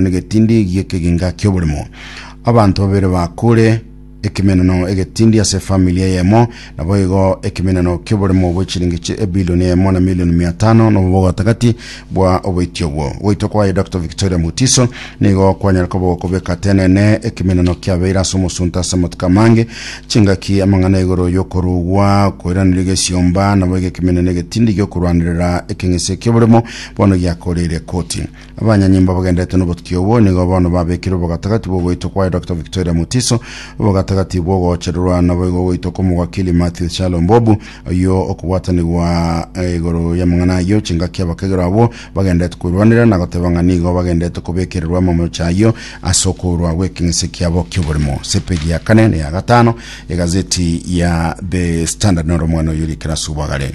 negetindi gi'ekeginga ki'oborimo. Abanto babere bakure, ekemenano egetindi ase efamili eyemo, naboigo ekemenano ki'oborimo bwe chiringi chi ebilioni eyemo na milioni mia tano nobo bogotagati bwa oboiti obwo. Goitwa kwaye Dr. Victoria Mutiso nigo kwanyare koba gokobeka tenene ekemenano kiabeire ase omosunte ase amatuko amange, chingaki, amang'ana igoro y'okorugwa, koiraneria gesiomba, naboigo ekemenano egetindi gi'okorwanerera ekeng'ese ki'oborimo bono giakoreire ekoti. Abanyanyimbo abagenderete nobotuki obwo nigo bono babekire obogatagati bw'ogoitwa kwaye Dr. Victoria Mutiso, obogatagati bw'ogoochererwa naboigo ogoitwa kw'omogwakili Matthew Chalo Mbobu, oyio okobwatanigwa igoro y'amang'ana ayio. Chingaki abakegerwa abwo bagenderete koirwanera na goteba ng'a nigo bagenderete kobekererwa amamocha ayio ase okourwa gw'ekeng'ese kiabo ki'oborimo. Ase epeji ya kane na ya gatano y'egazeti ya The Standard noro omwana oyio rikera ase obwagare.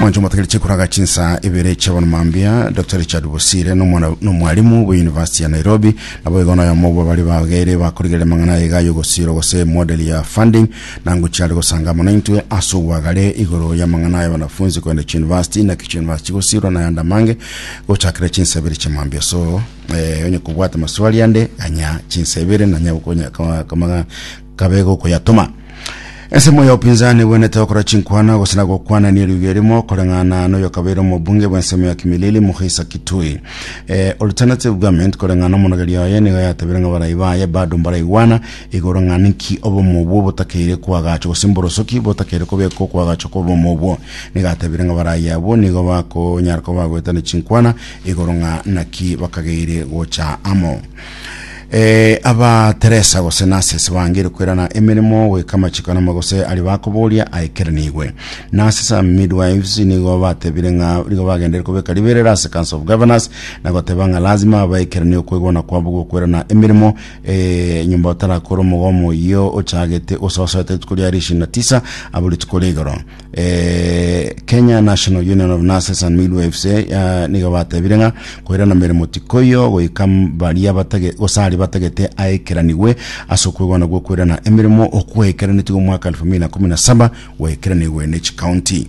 mwancho motagere chikuraga chinsa ibere chiabona mambia dr richard bosire nomwana- nomwarimu bwa university ya nairobi nabo igo noyomo bwa bari bagere bakorigerera mang'ana aiga yogosira gose model ya funding nango chiare gosanga mono intwe ase obwagare igoro y'amang'ana ya wanafunzi kogenda chiuniversity naki chiuniversity gosirwa na yande amange gochakera chinsa ibere chia mambia so eh, onye kobwata maswali ande anya chinsa ibere nanya gokonya kama- kama- kabega okoyatoma. Ensemo y'obopinzani ebwenerete gokora chinkwana gose na gokwanania riugi erimo koreng'ana noyokabeire omobunge bw'ensemo ya Kimilili Mukhisa Kitui. E, Alternative Government koreng'ana omonogeri oye nigo yatabire ng'a barai baye bado mbaraigwana igoro ng'a ninki obomo obwo botakeire koagachwa gose mborosoki botakeire kobekwa okoagachwa kw'obomo obwo. Nigo atabire ng'a barai abwo nigo bakonyara koba bagoetania chinkwana igoro ng'a naki bakageire gocha amo. Eh, aba Teresa gose Narcisse bangire kwerana emeremo goika amachiko anamo gose ari bakoboria aikeranigwe. Narcisse and midwives nigo batebire ng'a nigo bagendere kobeka riberera ase Council of Governors na goteba ng'a lazima baikeranigwe kwegwana kwabo gokwerana emeremo eh, nyomba otarakora omogomo oyio ochagete ososoete rituko ria rishina tisa abo rituko rigoro Eh, Kenya National Union of Nurses and Midwives eh, ya- nigo batebire ng'a koirana meremo tikoyo goika m- baria batage gosari batagete aekeranigwe ase okwegwana gwokoirana emeremo okwaekeranetwe omwaka 2017 gwaekeranigwe ne chikaunti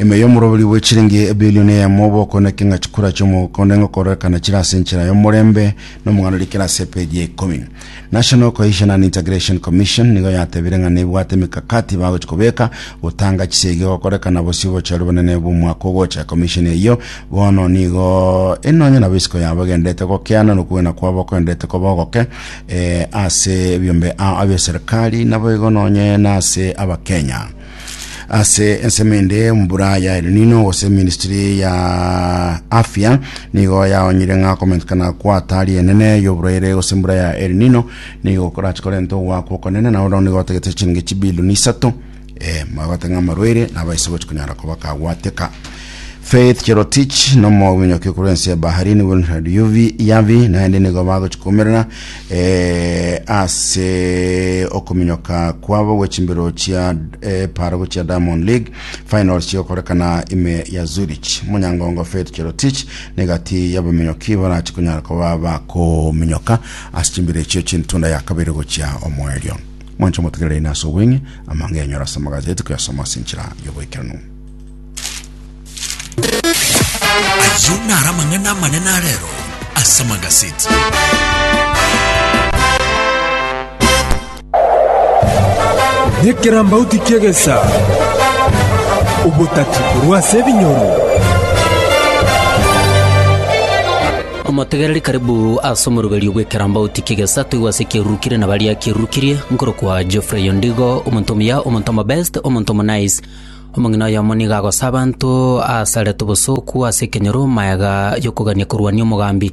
Ime y'omoroberi bwe chiringi ebilioni eyemo obokone ekeng'a chikura chi'omokone ng'okorekana chire ase enchera y'omorembe nomong'anereri kera ase epeji ya ikomi. National Cohesion and Integration Commission nigo yatebire ng'a nebwate emekakati bagochi kobeka gotanga chisegi gokorekana bosio obochori bonene bw'omwaka ogocha. Commission eyio bono nigo enonye nabo isiko yabo egenderete gokeana nokogena kwabo okogenderete koba ogoke eh, ase ebiombe ao abia serikali naboigo nonye nase abakenya. ase ensemo ende mbura ya El Nino gose ministry ya afya nigo yaonyire ng'a komentekana kwa hatari enene y'oborwaire gose mbura ya El Nino nigo korache korente ogoakwa okonene na ororo nigo otegete chiringi chibilioni isato eh, magote ng'a amarwaire nabo ase gochi konyara koba kagwateka Faith Cherotich nomo winyoki korwa ense ya Bahrain Wilfred Yuvi Yavi naende nigo bagochikomerera eh, ase okominyoka kwabo gwechimbero chia eh, paro chia Diamond League finals chigokorekana ime ya Zurich. Munyangongo Faith Cherotich negati yabaminyoki barachi konyara koba bakominyoka ase chimbero echio chintunda ya kabere gochia omoerio. Mwanche motegerere ina ase obweng'e amang'e yanyora ase amagazeti koyasoma ase enchera y'oboikeranu. Ayio naro amang'ana amanene arero ase amagazeti. Nekerambauti ki'egesa, obotati korwa ase ebinyoro. omotegereri karibu ase omoruberio bw'ekerambauti kegesa toigwe ase ekerurukire na baria kerurukirie nkorokwa geoffrey ondigo omonto omuya omonto omobest omonto omonice Omong'ina oyomo nigo agosa abanto aasarete obosooku ase ekenyoro magega y'okogania korwania omogambi.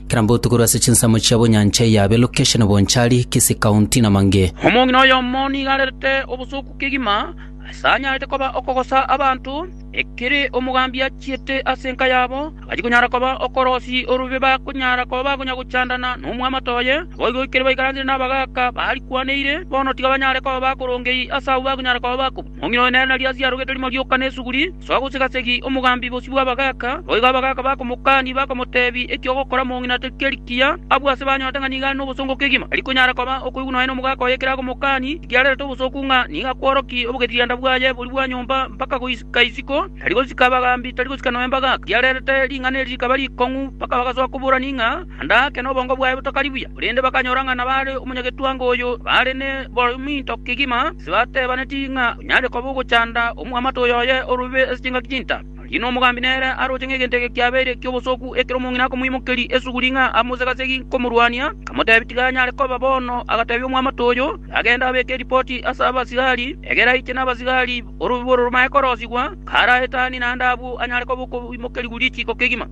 Kera mbotuko rwe ase chinsemo chia bonyancha eya Abelocation, Bonchari, Kisii County, na Mange. Omong'ina oyomo nigo arerete obosooku kegima ase anyarete koba okogosa abanto, ekere omogambi achiete ase enka yabo, agachia konyara koba okorosi orube bakonyara koba bakonya gochandana nomwamato oye. Naboigo ekero baikaranire nabagaaka barikwaniire, bono tiga banyare koba bakorongei ase abwo bakonyara koba bakobua. Moong'ina oye nere nario asio arogete rimo rioka nesuguri, soa gosega-segi omogambi bosio bw'abagaaka. Boigo abagaaka bakomokania, bakomoteebia, Eki ogokora mong'ina tikeri kiya, abwo ase banyorete ng'a nigo are nobosongo kegima. Tari konyara koba okoigwa nonya nomogaaka oye ekero agomokania, ekiarerete obosooku ng'a nigo akworokia obogesianda bwaye boria bwa nyomba mpaka goisika isiko. Tari gosika abagambi, tari gosika nonya mbagaaka, ekiarerete ring'ana eri rikaba rikong'u, mpaka bagasoa koborania ng'a, Naende ake nobongo bwaye botokari buya, korende bakanyora ng'a nabare omonyagetwango oyo bare nebominto kegima, ase batebaneti ng'a onyare koba ogochanda omwamate oyoye orube ase chingaki chinta. Rirorio nomogambi nere aroche ng'a egento eke kiabeire ki'obosooku ekero omong'ina akomoimokeria esuguri ng'a amose gasegi komorwania, akamotebia tiga anyare koba bono. Agatebia omwamate oyo, agende abeke eripoti ase abasigari, egere aiche nabasigari orube bororo manye korosigwa, kare aetanie naende abwo anyare koba okoimokerigwa richiiko kegima.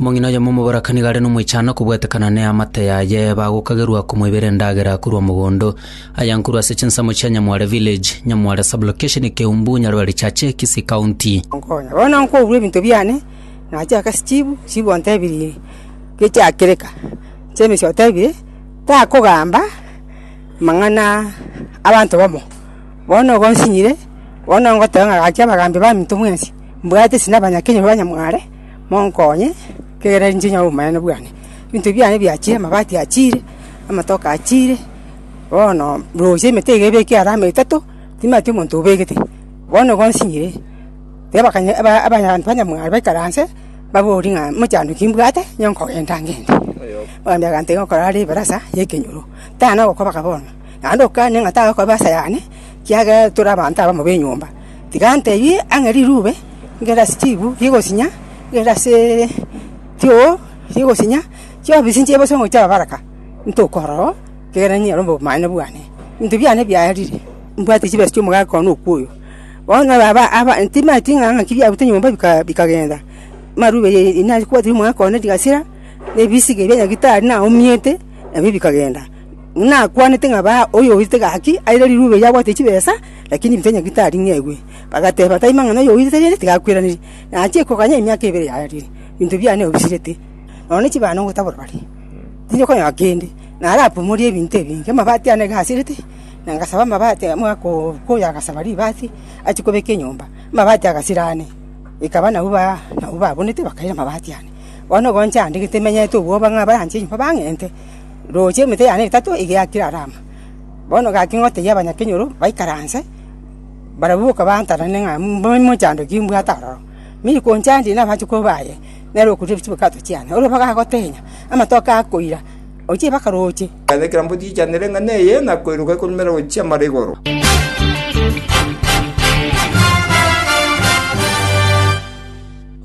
Omong'ina oyomo omoborakani gare nomoichano kobwetekana neamate yaye, bagokagerwa komoibera endagera korwa mogondo. Aya nkorwa ase chinsemo chia Nyamware Village, Nyamware Sublocation, Keumbu, Nyaribari Chache, Kisii County. Onkonya. Bono nkoburwa ebinto biane, nache aka steve, steve ontebirie gechiakire ka, James otebire takogamba mang'ana abanto bamo, bono igo nsinyire, bono ngoteba ng'a gaki abagambi baminto mwensi, mbwate esina abanya kenya ba Nyamware. monkonye, ekiagera ninche nyore obomanene bwane. Ebinto ebi biane biachire, amabati achire, amatoke achire, bono rosia emete iga ebekire alama etato, timanyeti omonto obegete, bono igo nsinyire, teba kanya aba abanto banyamwaro baikaranse, babori ng'a mochando ki mbwate, onye nkogenda ngende. Ogambia egento iga ogokora are ebarasa ya ekenyoro, tana ogokobaka bono, naende okane ng'a tare okoba asayane, ekiagera tore abanto abamo ba enyomba, Tiga ntebie ang'e rirube rigere ase chiibu rigosinya, rigere ase tioo rigosinya, chiobi chinchire bosa omochie ababaraka, ntokorora oo, ekiagera niye ere omomani bwane. Ebinto biane biarire, mbwate chibesa chi'omogaka one okwo oyo. Bono aba aba timanyeti ng'a ng'aki biabuta nyomba bika bikagenda, amarube ye inari kobwatiri omogaka one rigasira, na ebisige bia nyagitari naomiete, nabio bikagenda. Nakwanete ng'a baa oyoirete gaki aire rirube erio abwate chibesa, lakini ebinto ebinyeke taring'egwe. Bagateeba, Tari mang'ana oyoirete rende tigakweraneria, na achie koganya emiaka ebere yarire, ebinto biane obisirete, nonya ne chibando ngotabora bare, tiri konyora kende. Na arapomorie ebinto ebinge, amabati ane gasirete, na ngasaba amabati amo ako oyo agasaba ribati achie kobeka enyomba, amabati agasira ane, ekaba nabu baa nabu babonete bakaira amabati ane. Bono ogoancha ande gete menyete obwoba ng'a abaranche enyomba bang'ente. Roche emete yane etato iga yakire Rama. Bono egaki ng'a otebie abanyakenyoro baikaranse, barabwo boka baantanane ng'a mochando ki mbwate aroro. Mi rikonchandie na abanchokoro baye, nere okoria chibakato chiane. Ore mpaka agotenya, amatoke akoira, ochie mpaka roche. Ekero ekero mbwe tichanire ng'a neye ng'a koiroka ekorumera gochia mara igoro.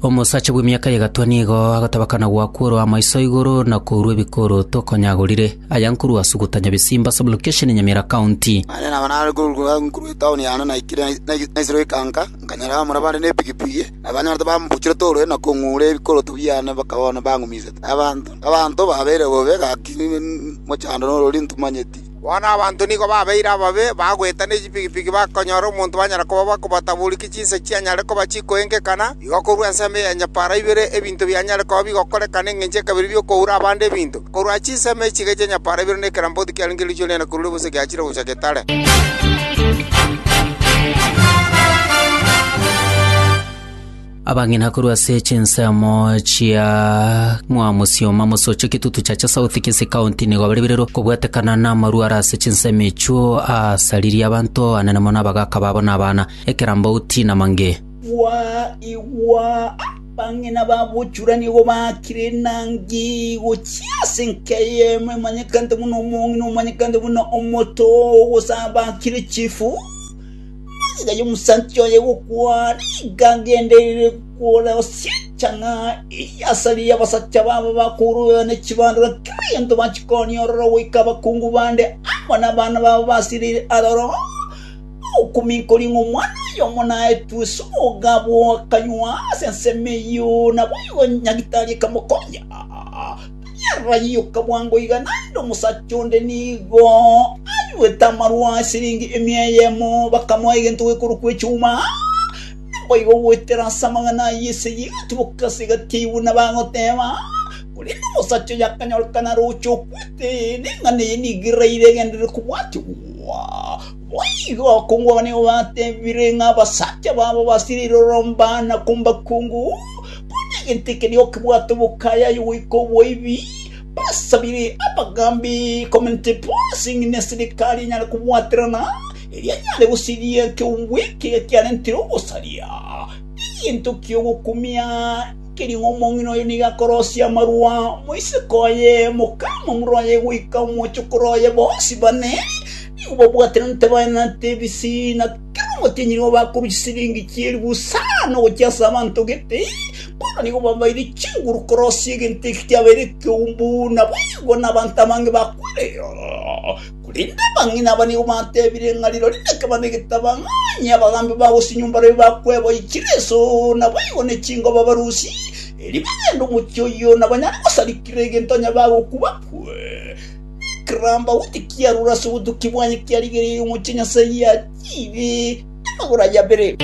Omosacha bw'emiaka y'egatwa nigo agotabakana gwakworoa amaiso igoro na kourwa ebikoroto okonyagorire. Aya nkorwa ase ogotanya Bisimba sublocation Nyamira county. Naende nabo nare korwa nkorwa etown yane naikire nai- naisirwe ekanka, nkanyora abamura bande nepigipigi, na banyorete bambuchire torwe na kong'ura ebikoroto biane mpaka bono bangumisete. Abanto abanto babeire bobe gaki mochandore orori ntomanyeti. Bono abanto nigo babeire ababe, bagweta ne chipigipigi bakonyora omonto banyare koba bakobataborukia chinsa chianyare koba chikoengekana, igo korwa ensemo ya nyapara ibere ebinto bianyare koba bigokorekana engencho ekabere bi'okoura abande ebinto. Korwa chinsemo echi iga chia nyapara ibere ne keramboti kiarenge riichwe riane korwa ribosa giachire gocha getare. Abang'ina korwa ase chinsemo chia Mwamosioma mosochie Kitutu Chacha South Kisii County nigo bare birero kobwatekana namarwa are ase chinsemo echio aasaririe abanto abanene mono abagaka babo na abana, ekerambauti na mange. Igwa, igwa! Abang'ina babochura nigo baakire enangi gochia ase enka eyemo emanyekanete buna Omong'ina omanyekante buna Omoto, gose abakire chifu. Magega y'omosanchwa oye gokwa nigo agendereire kore ase enchang'a eyio asare y'abasacha babo bakourugana ne chibandora kera gento bachikonia ororo goika abakungu bande amo nabana babo basireire aroro, bagokominkoria ng'a omwana oyomo naetwe ase obogabo akanywa ase ensemo eyio, naboigo nyagitari akamokonya. Yarayioka bwango iga naende omosacha onde nigo ayuete amarwa a siringi emia eyemo, bakamoa egento gekorokwa echuma. Naboigo goetera ase amang'ana ayio esegi egatiboka ase egati yayi buna bagoteba. Korende omosacha oyo akanyorekana aroche okwete, na eng'ana eye nigo eraire egenderere kobwatigwa. Boigo akongwa abana igo batebire ng'a abasacha babo basireire oromba na kombakungu, konya egento eke nigo kebwate obokayayu goika oboibi. Basabire abagambi komente bonsi ng'ina eserikari enyare kobwaterana, erio enyare gosiria ekeumbu eke ekiarentire ogosaria. Egento ki'ogokumia nkeria ng'a omong'ina oyo nigo akorosia amarua moiseke oye, mokamamura oye goika omochokoro oye, bonsi bane. Nigo babwate na ntabane na ntebisi, na kera omotienyi nigo bakorusia silingi chieri bosa nogochia ase abanto gete. Bono nigo babaire chinguru korosia egento eki kiabaire ekeumbu, naboigo nabanto abange bakwera eyo. Korende abang'ina aba nigo batebire ng'a rirorio nekebanda egetaba, ng'a onye abagambi ba gose nyomba roye bakweboyia chireso, naboigo ne chingoba barusie, erio bagende omochie oyio, nabanyare gosarikera egento onye bagoku bakwe. Kiramba gochia kiarure ase obotuki bwaye kiarigereire omochie Nyasae ya chibi namagoro aye abere.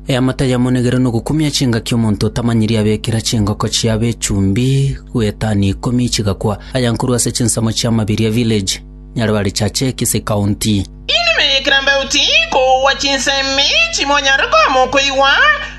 Eamate yamo negere nogokumia chingaki omonto otamanyiri abekera chingoko chiabe echumbi gwetani ikomi chigakwa, aya nkorwa ase chinsemo chia Mabiria Village. Nyareba richache kisikaunti. Inwe meyekera mbeu ti kogwa chinsemi chimonyare koama okoigwa,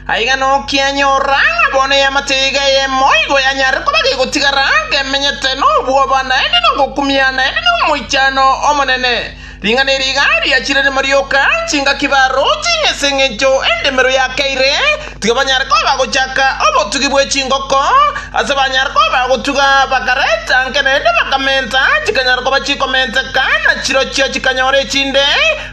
aiga nokianyora ng'a bono eamate eyeiga eyemo igo yanyare koba gegotigara ngemenyete nobwoba naende nogokumia naende nomoichano omonene. Ring'ana eri iga riachire rimo rioka chingaki baro ching'ese engencho endemero yakeire, Tiga banyare koba gochaka obotugi bwe chingoko ase banyare koba gotuga, bakareta nke naende bakamenta, chikanyara koba chikomenteka, na chirochio chikanyora echinde,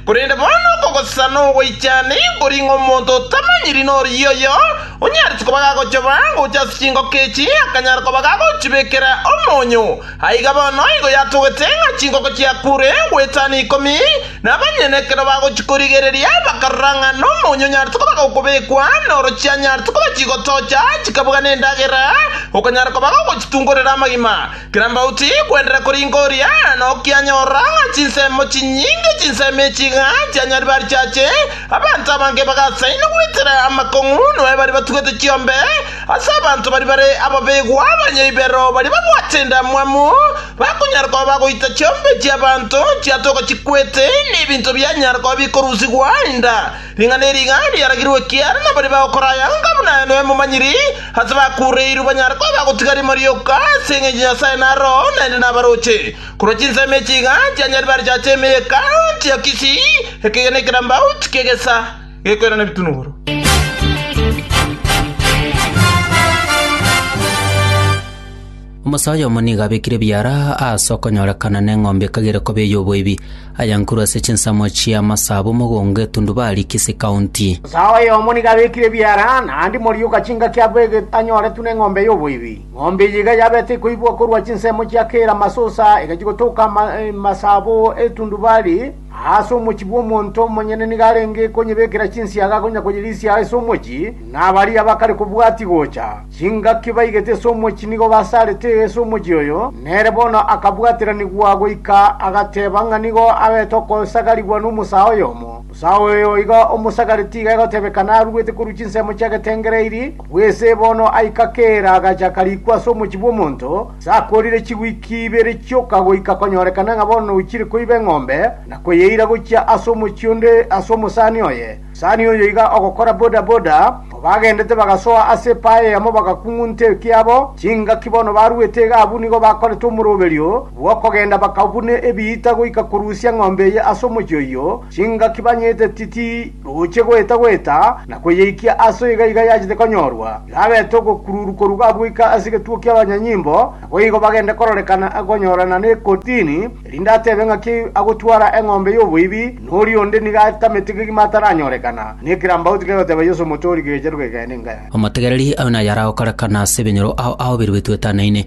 korende bono okogosesa na ogoichani nkori ng'omonto otamanyiri norigie oyo onyarete koba gagochoba gocha ase chingoko echi akanyara koba gagochibekera omonyo. Aiga bono igo yatogete ng'a chinkoko chia kure gwetano ikomi, na abanyene ekero bagochikorigereria bakarora ng'a nomo onyonyarete koba gokobekwa, na oro chianyarete koba chigotocha chikabuga nendagera, okonyara koba gogochitungorera amagima. Kerambauti kwenderera koringa oria, na okianyora ng'a chinsemo chinyinge chinsemi echi iga chianyaribari chiache, abanto abange bagasaina gwetera amakong'u, noe baria batugete chiombe, Ase abanto baria bare ababegwa abanyaibero baria babwate endamwamu, bakonyara koba bagoita chiombe chi'abanto chiatoka chikwete, na ebinto bianyara koba bikorusigwa enda. Ring'ana eri iga riaragirwe ekiagera nabaria bagokora aya onga buna aye noe momanyiri, ase bakuureirwe banyare koba bagotiga rimo rioka, ase engencho Nyasae naroo naende nabaroche. Korwa chinsemo echi iga chianyaribare chiacha ime y'Hekalu, Antiochisi, ekegena ekerambau, tikegesa. gekoirana ebitunuguru. Omosacha oyomo nigo abekire ebiara ase okonyorekana neng'ombe ekagera koba ey'oboibi, ayankuru ase chinsemo chi'amasabo mogongo etundubari Kisii County. Omosacha oyomo nigo abekire ebiara naende moria ogachinga kiabo egento anyoretwe neng'ombe y'oboibi. Ng'ombe eye iga yabete ekoibwa korwa chinsemo chia kera masusa egachia gotoka amasabo etundubari, Aase omochie bw'omonto omonyene nigo arenge konyebekera chinsiaga konya koyerisia ase omochie, na baria bakare kobwatia gocha chingaki baigete ase omochie nigo basarete ase omochie oyo, nere bono akabwatiranigwa goika agateba ng'a nigo abete okosagarigwa nomosaa oyomo. Mosaa oyo iga omosagare tiga egotebeka naruete korwa chinsemo chi'agetengere eirie, korwa ise bono aikakera agacha karikwa ase omochie bw'omonto, Sakorire chigwiki ibere chioka goika konyorekana ng'a bono ochire koiba eng'ombe na koyeira gochia ase omochie onde ase omosani oye. Omosani oyo iga ogokora bodaboda, kobagendete bagasoa ase epae eyemo bagakung'unta ekiabo, chingaki bono baruete iga abwo nigo bakorete omoroberio bw'okogenda bakabuna ebiita goika korusia eng'ombe eye ase omochie oyio, Chingaki banyete titi roche goeta-goeta na kweyeikia aso iga iga yachete konyorwa, iga abete ogokururu korwa gabuika ase egetuo ki'abanyanyimbo, naboigo bagende kororekana akonyorana n'ekotini, erinde atebe ng'aki agotwara eng'ombe y'oboibi, na oria onde nigo atamete kegima ataranyorekana, na ekerambaoti kegoteba Yeso Omotoori kegecheru gekeene inga yaye. Omotegereri abe nayaragokorekana ase ebinyoro ao aobiruetwe etano eine,